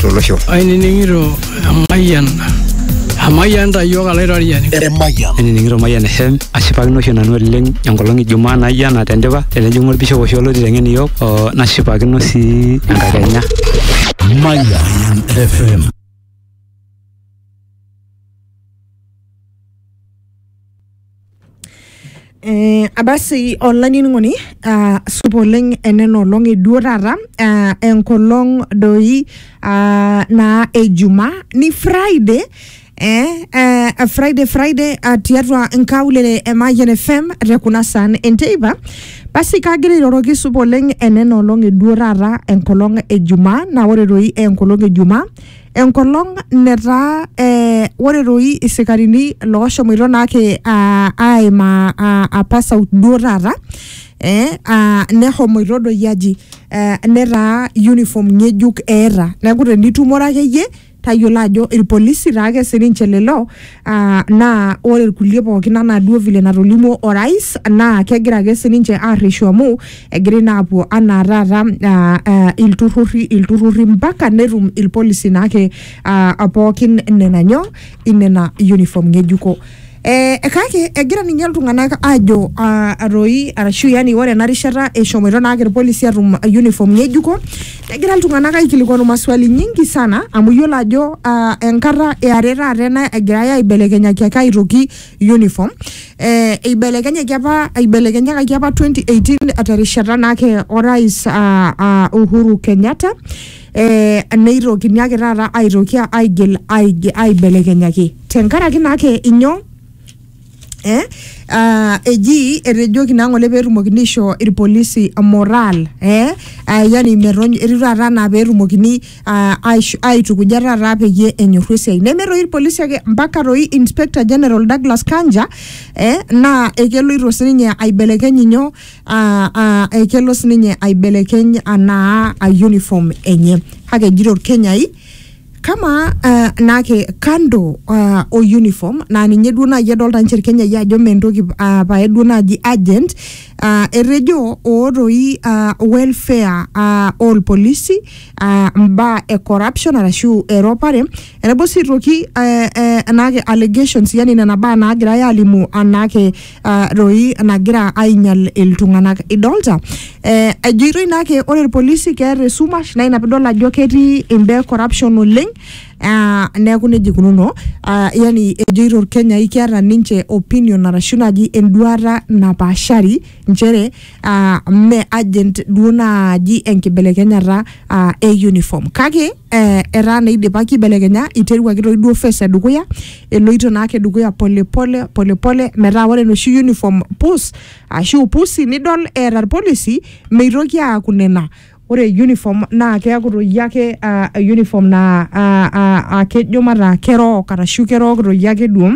tolosho. Ainining'ito emayian emayian ta iyiook alaitoriani. Emayian. Ainining'ito emayian e Shem ashipakino oshi nanu oleng enkolong Ijumaa naijo ena tendipa tenejing'u olbishop oshi olo oiteng'en iyiook o nashipakino sii enkakenya. Mayan FM. Eh, abasi olainining'oni ah, supa oleng enena olong eduo taata ah, enkolong doi ah, naa ejuma ni friday Eh, eh, friday friday ah, tiatua nkaulele e Mayian fm te kuna saan enteipa basi kagira airoroki supa oleng enena olong eduo taata enkolong ejumaa naa ore doi enkolong ejumaa enkolong netaa eh, ore doi isikarini looshomoito naake ah, aimaa ah, apa south duo taata eh, ah, nehomoito doi aji eh, netaa uniform ng'ejuk eeta neeku tenitumore akeyie tayiolo ajo irpolisi taake sininche lelo Uh, naa ore irkulie pookin anaa duo vile natolimuo orais naa kegira ake sininche arreshu amu egira naa apuo anaa taata uh, uh, ilturruri ilturruri mpaka netum ilpolisi naake uh, pookin nena nyoo inena uniform ng'ejuko Eh, kake egira ninye iltung'anak ajo uh, atoi arashu yani ore ena rishata eshomoito naake irpolisi atum uniform ng'ejuko Kegira iltung'anak aikilikwanu maswali nyingi sana amu iyiolo ajo uh, enkata eare taata ena egirai aibelekenyaki ake aitoki uniform eh, eibelekenyaki apa aibelekenyakaki apa 2018 terishata naake orais uh, uh, Uhuru Kenyatta eh, neitokini ake taata aitoki aigil aige- aibelekenyaki tenkaraki naake inyoo Eh? Uh, eji etejoki naa ng'ole peetumokini aisho irpolisi moral eh? uh, yani merony etiu taata anaa peetumokini uh, aisho- aitukuja taata peyie enyorru esiai neme toi irpolisi ake mpaka toi inspector general Douglas Kanja eh? naa ekeloito sininye aibelekeny inyo uh, uh, ekelo sininye aibelekeny anaa uh, uniform enye kake ejito irkenyai kamaa uh, naake kando uh, o uniform naa ninye duo naaji edolta nche irkenyai ajo mee entoki uh, pae duo naaji agent uh, etejo ootoi uh, welfare uh, olpolisi uh, mbaa e corruption arashu eropare enaiboo sii aitoki uh, uh, naake allegations yani nena baa naagirai alimu anaake ah, roi nagira ainyal iltung'anak idolta eh, ejoitoi naake ore irpolisi keeta esumash naa ina pidol ajo ketii imbaa e corruption oleng ah, neeku nejia ikununo ah, yani ejoito irkenyai keeta ninche opinion arashu naaji enduata napaashari nchere ah, mme agent duo naaji enkibelekenyata ah, e uniform kake eh, etaa naa idipaki aibelekenya iteruaki toi duo phase edukuya eloito naake dukuya polepole polepole metaa ore enoshi uniform pus ashu pusi nidol eeta irpolisi meitoki aaku nena ore uniform naa keaku toi ake ah, uniform naa ah, ah, ah, kejo mataa kerook arashu kerook toi ake duo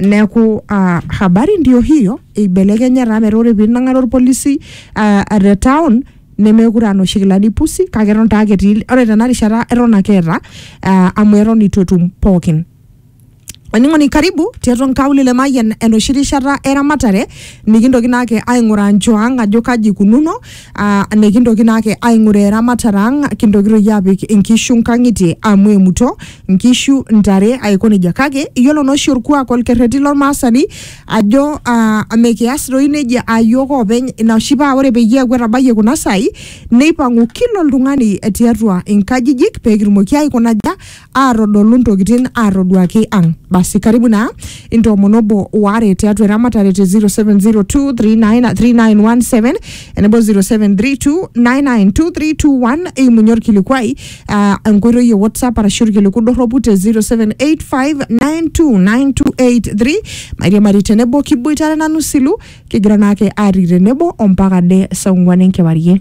neeku ah, habari ndio hiyo eibelekenya taa metaa ore pinang'are orpolisi ah, ah, te town nemekure anoshi kilani pusi kake eton taa ake etii ore tena rishata eton ake eeta ah, amu eton itu etum pookin Olainining'oni karibu tiatua nkaulele Mayian enoshi rishata eramatare nikintoki naake aing'uraa nchoo ang' ajo kaji ikununo aa nikintoki naake aing'uraa eramatare ang' kintoki toi aapik inkishu nkang'itie amu emuto nkishu, ntare aiko neija. Kake iyiolo naa oshi orkuak orkerreti lormaasani ajo aa mekias toi neija aa iyiok oopeny ina oshi paa ore peyie eeku etabayie kuna saai nipang'u kila oltung'ani tiatua nkajijik pee kitumoki aikuna aja aatodolu ntokitin aatoduaki ang basi karibu naa intoomon obo waare tiatua eramatare te 0702393917 enebo 0732992321 eimunye orkilikuai ah, enkoitoi e whatsapp arashu orkiliku dorropu te 0785929283 mairiamari tenebo kiboitare nanu silu kigira naake atii tenebo ompaka de saa ong'uan enkewarie